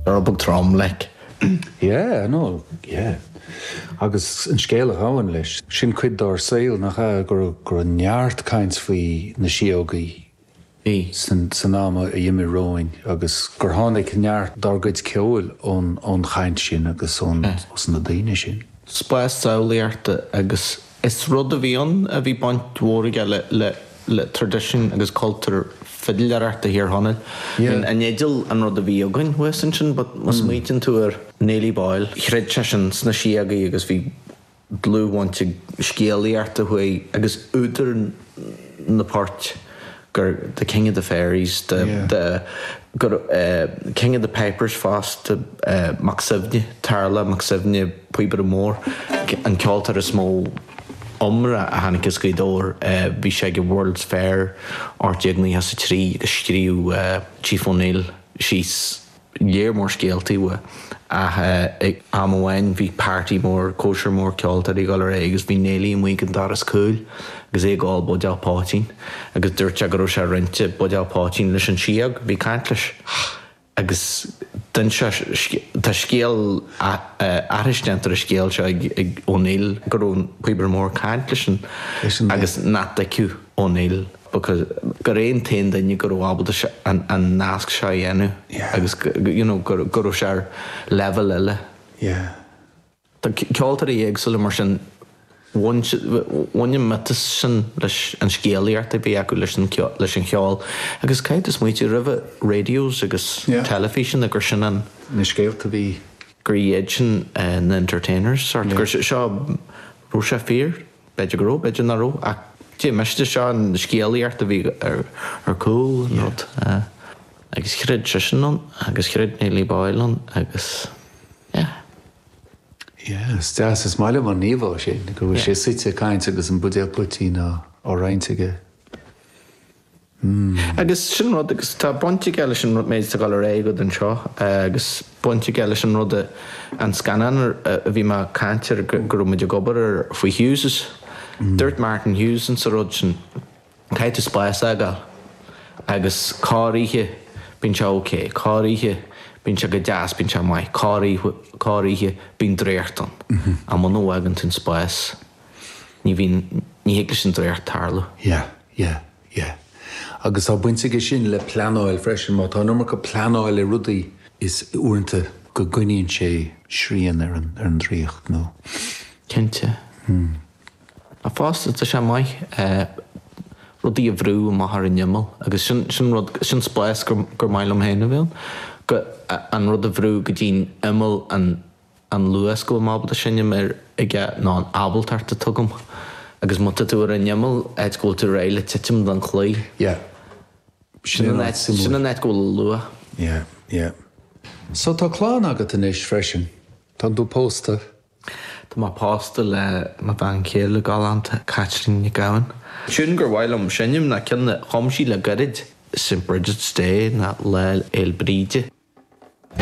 Uirbeach trom, like. Yeah, I know, yeah. Agus an scéal a ghabhann leis, sin cuid dár saol, nach ea? Go raibh, go raibh neart caint faoi na síógaí. Bhí. San, san am a dh'imigh romhainn agus gur tháinig neart dár gcuid ceoil ón, ón chaint sin agus ón, ós na daoine sin. Spás samhlaíochta agus. Is rud a bhí ann a bhí baint mhór aige le traidisiún agus cultúr fidléireachta Thír Chonaill. I mean, an fhidil an rud a bhí againn thuas ansin but má smaointíonn tú ar Néillí Boyle, chreid sé sin sna síogaí agus bhí dlúthbhaint ag scéalaíocht a chuaigh, agus údar, na poirt, gur the king of the fairies, the, the, gur eh king of the pipers fosta, eh Mac Suibhne, Tarlach Mac Suibhne, an Píobaire Mór, an ceoltóir is mó iomrá a tháinig as Gaoth Dobhair, eh bhí sé ag an World's Fair ocht déag naocha is a trí agus scríobh eh Chief O'Neill síos, lear mór scéaltaí uaidh ach ag am amháin bhí páirtí mór, cóisir mór ceoltóirí ag dul ar aghaidh agus bhí Néilí amuigh ag an doras cúil agus é ag ól buidéal poitín agus dúirt sé go raibh sé ag roinnt buidéal poitín leis an síog, a bhí ag caint leis agus d'inseadh sé, tá scéal, aithris déanta ar an scéal seo ag O'Neill go raibh an píobaire mór ag caint leis an agus nach dtuigfeadh O'Neill. because gur é an t-aon duine a raibh ábaltacht an nasc seo a dhéanamh agus you know go raibh sé ar leibhéal eile. Tá ceoltóirí éagsúla mar sin, bhain an miotas sin, an scéalaíocht a bhí acu leis an cheol agus caithfidh tú smaointiú, roimhe radios agus teilifíseanna, gur sin an, na scéalta a bhí. gur iad sin na entertainers sort, gur seo, raibh sé fíor? B'fhéidir go raibh, b'fhéidir nach raibh, ach cér mhiste, seo an scéalaíocht a bhí ar chúl an rud. Agus chreid seisean ann agus chreid Néillí Boyle ann agus yeah. Yeah, is deas, is maith liom an íomhá sin, go bhfuil sé suite ag caint agus an buidéal poitín á roinnt aige. Agus sin an rud, agus tá baint aige leis an méid atá le rá agat anseo, agus baint aige leis an rud, an scannán a bhí mé ag caint air, go raibh muid ag obair air faoi Hughes'. Dúirt Martin Hughes insa rud sin, caithfidh tú spás a fhágáil agus corroíche bíonn sé ok, corroíche bíonn sé go deas, bíonn sé maith, corroíche, corroíche bíonn draíocht ann. Ach muna bhfágann tú an spás, ní bhíonn, ní thig leis an draíocht tarlú. Yeah. Yeah, yeah. Agus tá baint aige sin le pleanáil freisin. Má tá an iomarca pleanáil ar rudaí, uaireanta go gcoinníonn sé srian ar an draíocht nó. Cinnte. Ach fosta tá sé maith rudaí a bhrú amach ar an imeall agus sin, sin rud, sin spás gur, gur maith liom féin a bheith ann, go, an rud a bhrú go dtí'n imeall an, an luas go bhfuilim ábalta seinm ar aige ná an ábaltacht atá agam agus má tá tú ar an imeall áit go bhfuil tú réidh le titim den chlaí, Yeah. sin an áit, sin an áit go bhfuil an lua. Yeah, yeah. So tá clann agat anois freisin, tá tú pósta? Tá mé pósta le mo bhean chéile galánta, Caitlín Nic Gabhann. Tune gur mhaith liom seinm ná an ceann a chum sí le gairid, St Brigid's Day ná Lá Fhéil Bríde.